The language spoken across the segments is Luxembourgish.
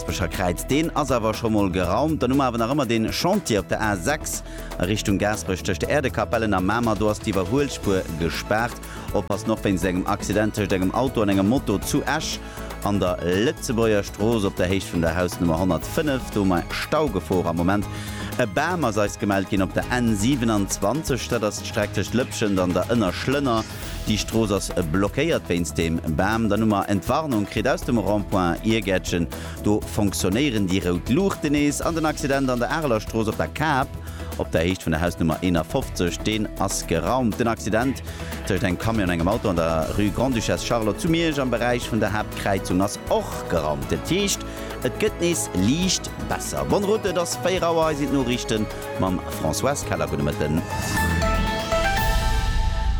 D'Aspecher Kräid, deen ass awer scho mol geraumt. Dann hu mer awer nach ëmmer dee Chantier op der A 6 a Richtung Gaasperech tëscht der Äerdekapellen a Mamer. Do ass d'Iwwerhuelspuer gespaart. Oppassen och wéinst engem Accident tëscht engem Auto an engem Moto zu Esch an der Lëtzebuerger Strooss op der Héicht vun der Hausnummer 105. Do hu mer Staugefor am Moment. E Bam ass eis gemellt ginn op der N 27, dat ass d'Streck tëscht Lëpschent an der Ënnerschlënner. Déi Strooss ass blockéiert wéinst deem Bam. Dann hu mer Entwarnung kritt aus dem Rond-point Iergäertchen. Do fonctionnéieren déi rout Luuchten nees. An den Accident an der Areler Strooss op der Kap, op der Héicht vun der Hausnummer 51, deen ass geraumt. Den Accident tëscht engem Camion an engem Auto an der Rue Grande-Duchesse Charlotte zu Miersch am Beräich vun der Haaptkräizung ass och geraumt. Dat heescht, et gëtt nees liicht besser. Bonne route, et ass 4 Auer, hei sinn d'Noriichten. Mam Françoise Keller, gudde Mëtten.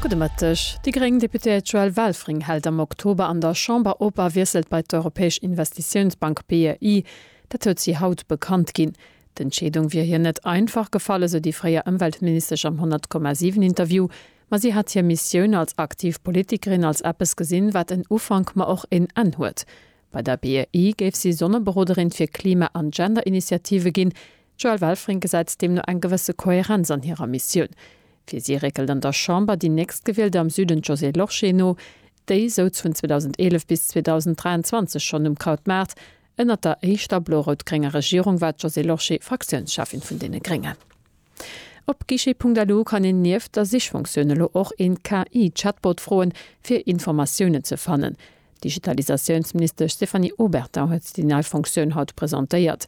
Gudde Mëtteg. Déi gréng Deputéiert Joëlle Welfring hält am Oktober an der Chamber op a wiesselt bei d'Europäesch Investitiounsbank, BEI. Dat huet si haut bekannt ginn. D'Entscheedung wier hir net einfach gefall, esou déi fréier Ëmweltministesch am 100, 7 Interview. Ma si hätt hir Missioun als aktiv Politikerin als eppes gesinn, wat en Ufank, ma och een Enn huet. Bei der BEI géif si Sonneberoderin fir Klima an Gender-Initiative ginn. D'Joëlle Welfring gesäit deemno eng gewësse Kohärenz an hirer Missioun. Fir si réckelt an der Chamber déi Nächstgewielter am Süden, d'Josée Lorsché, no. Déi souz vun 2011 bis 2023 schonn um Krautmaart. Ënnert der éischter blo-rout-grénger Regierung war d'Josée Lorsché Fraktiounscheffin vun deene Gréngen. Op guichet.lu kann een nieft der Sichfunktioun elo och een KI-Chatbot froen, fir Informatiounen ze fannen. D'Digitalisatiounsministesch Stéphanie Obertin huet déi nei Funktioun haut presentéiert.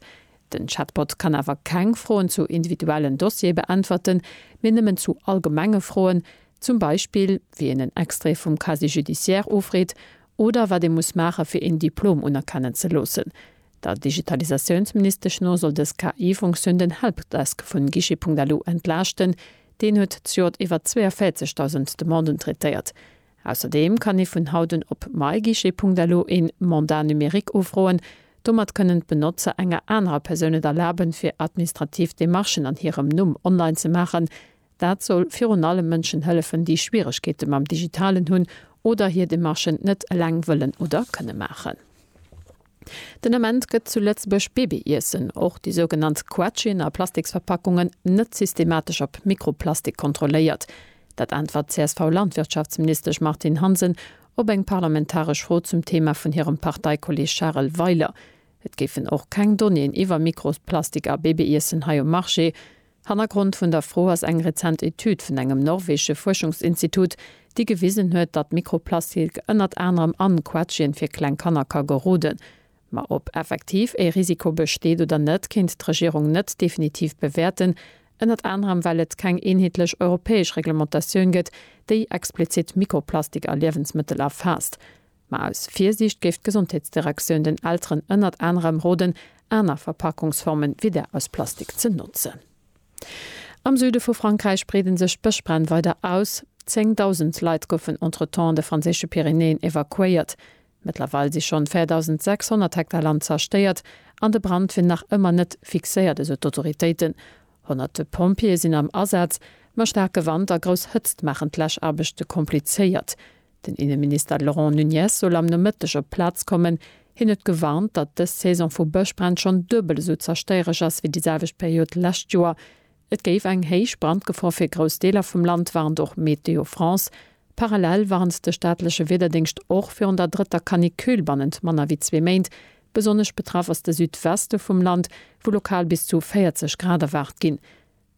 Den Chatbot kann awer keng Froen zu individuellen Dossiere beäntwerten, mee nëmmen zu allgemenge Froen, zum Beispill wéi een en Extrait vum Casier judiciaire ofreet oder wat ee muss maache fir een Diplom unerkennen ze loossen. Der Digitalisatiounsministesch no soll dës KI-Funktioun den Helpdesk vun Guichet.lu entlaaschten, deen huet d'Jod iwwer 42.000 Demanden traitéiert. Ausserdeem kann ee vun haut un op myguichet.lo een Mandat numérique ufroen. Domat kënnen d'Benotzer enger anerer Persoun et erlaben, fir administrativ Demarchen an hirem Numm online ze maachen. Dat soll virun allem Mënschen hëllefen, déi Schwieregkeete mam Digitalen hunn oder hir Demarchen net eleng wëllen oder kënne maachen. Den Ament gëtt zu Lëtzebuerg Babyiessen, och déi sougenannt Quetschen a Plastiksverpackungen, net systematesch op Mikroplastik kontrolléiert. Dat äntwert d'CSV-Landwirtschaftsministesch Martine Hansen op eng parlamentaresch Fro zum Thema vun hirem Parteikolleeg Charel Weiler. Et géifen och keng Donnéeën iwwer Mikroplastik a Babyiessen hei um Marché. Hannergrond vun der Fro ass eng rezent Etüd vun engem norwegesche Fuerschungsinstitut, déi gewisen huet, datt Mikroplastilk ënnert anerem an Quetschen fir kleng Kanner ka geroden. Ma ob effektiv ee Risiko besteet oder net, kéint d'Regierung net definitiv bewäerten, ënnert anerem well et keng eenheetlech europäesch Reglementatioun gëtt, déi explizit Mikroplastik a Liewensmëttel erfaasst. Ma aus Virsiicht géif d'Gesondheetsdirektioun den Elteren ënnert anerem roden, aner Verpackungsformen wéi där aus Plastik ze notzen. Am Süde vu Frankräich breede sech d'Bëschbränn weider aus. Zéng Dausend Leit goufen entretemps an de franséische Pyrenäen evakuéiert. Mëttlerweil si schonn 4.600 Hektar Land zerstéiert an de Brand wier nach ëmmer net fixéiert, esou d'Autoritéiten. Honnerte Pompjeeë sinn am Asaz, ma staarke Wand a grouss Hëtzt maachen d'Läschaarbechte komplizéiert. Den Inneminister Laurent Nunez soll am Nomëtteg op d'Plaz kommen. Hien huet gewarnt, datt dës Saison vu Bëschbränn schonn duebel esou zerstéiereg ass wéi déi selwecht Period lescht Joer. Et géif eng héich Brandgefor fir grouss Deeler vum Land, warnt och Météo France. Parallel warnt de staatleche Wiederdéngscht och virun der drëtter Canicule bannent manner wéi zwee Méint. Besonnesch betraff ass de Südweste vum Land, wou lokal bis zu 40 Grad erwaart ginn.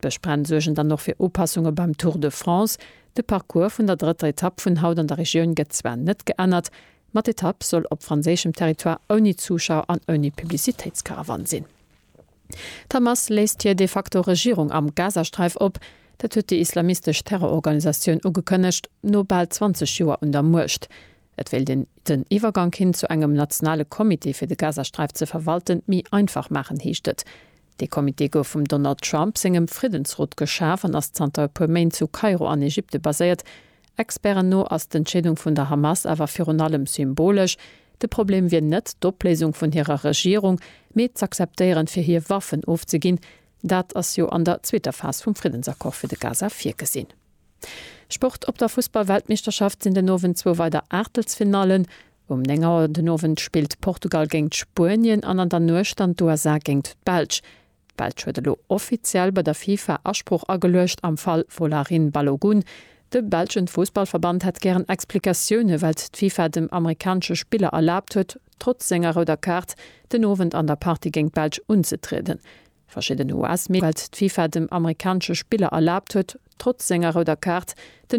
D'Bëschbränn suergen dann och fir Upassunge beim Tour de France. De Parcours vun der drëtter Etapp vun haut an der Regioun gëtt zwar net geännert, ma d'Etapp soll op franséischem Territoire ouni Zuschauer an ouni Publicitéitskaravan sinn. D'Hamas léisst hir de facto Regierung am Gazasträif op. Dat huet déi islamistesch Terrororganisatioun ugekënnegt, no bal 20 Joer un der Muecht. Et wéilt een den Iwwergank hin zu engem nationale Comité fir de Gazasträif ze verwalten, méi einfach maachen, heescht et. Dee Comité gouf vum Donald Trump sengem Friddensrot geschaf an ass zanter e puer Méint zu Kairo an Ägypte baséiert. Experten no ass d'Entscheedung vun der Hamas awer virun allem symbolesch. De Problem wier net d'Opléisung vun hirer Regierung, mee z'akzeptéieren, fir hir Waffen ofzeginn. Dat ass jo an der zweeter Phas vum Friddensaccord fir de Gaza virgesinn. Sport Op der Fussballweltmeeschterschaft sinn den Owend zwou weider Aachtelsfinallen. Um 9 Auer den Owend spillt Portugal géint Spuenien an an der Nuecht dann d'USA géint d'Belsch. D'Belsch huet elo offiziell bei der FIFA Asprooch ageluecht am Fall Folarin Balogun. De belschen Fussballverband hätt gären Explikatioune wellt d'FIFA dem amerikanesche Spiller erlaabt huet, trotz senger rouder Kaart den Owend an der Partie géint d'Belsch unzetrieden. Verschidden US-Medien, nodeems d'Fifa dem amerikanesche Spiller erlaabt huet, trotz senger rouder Kaart den.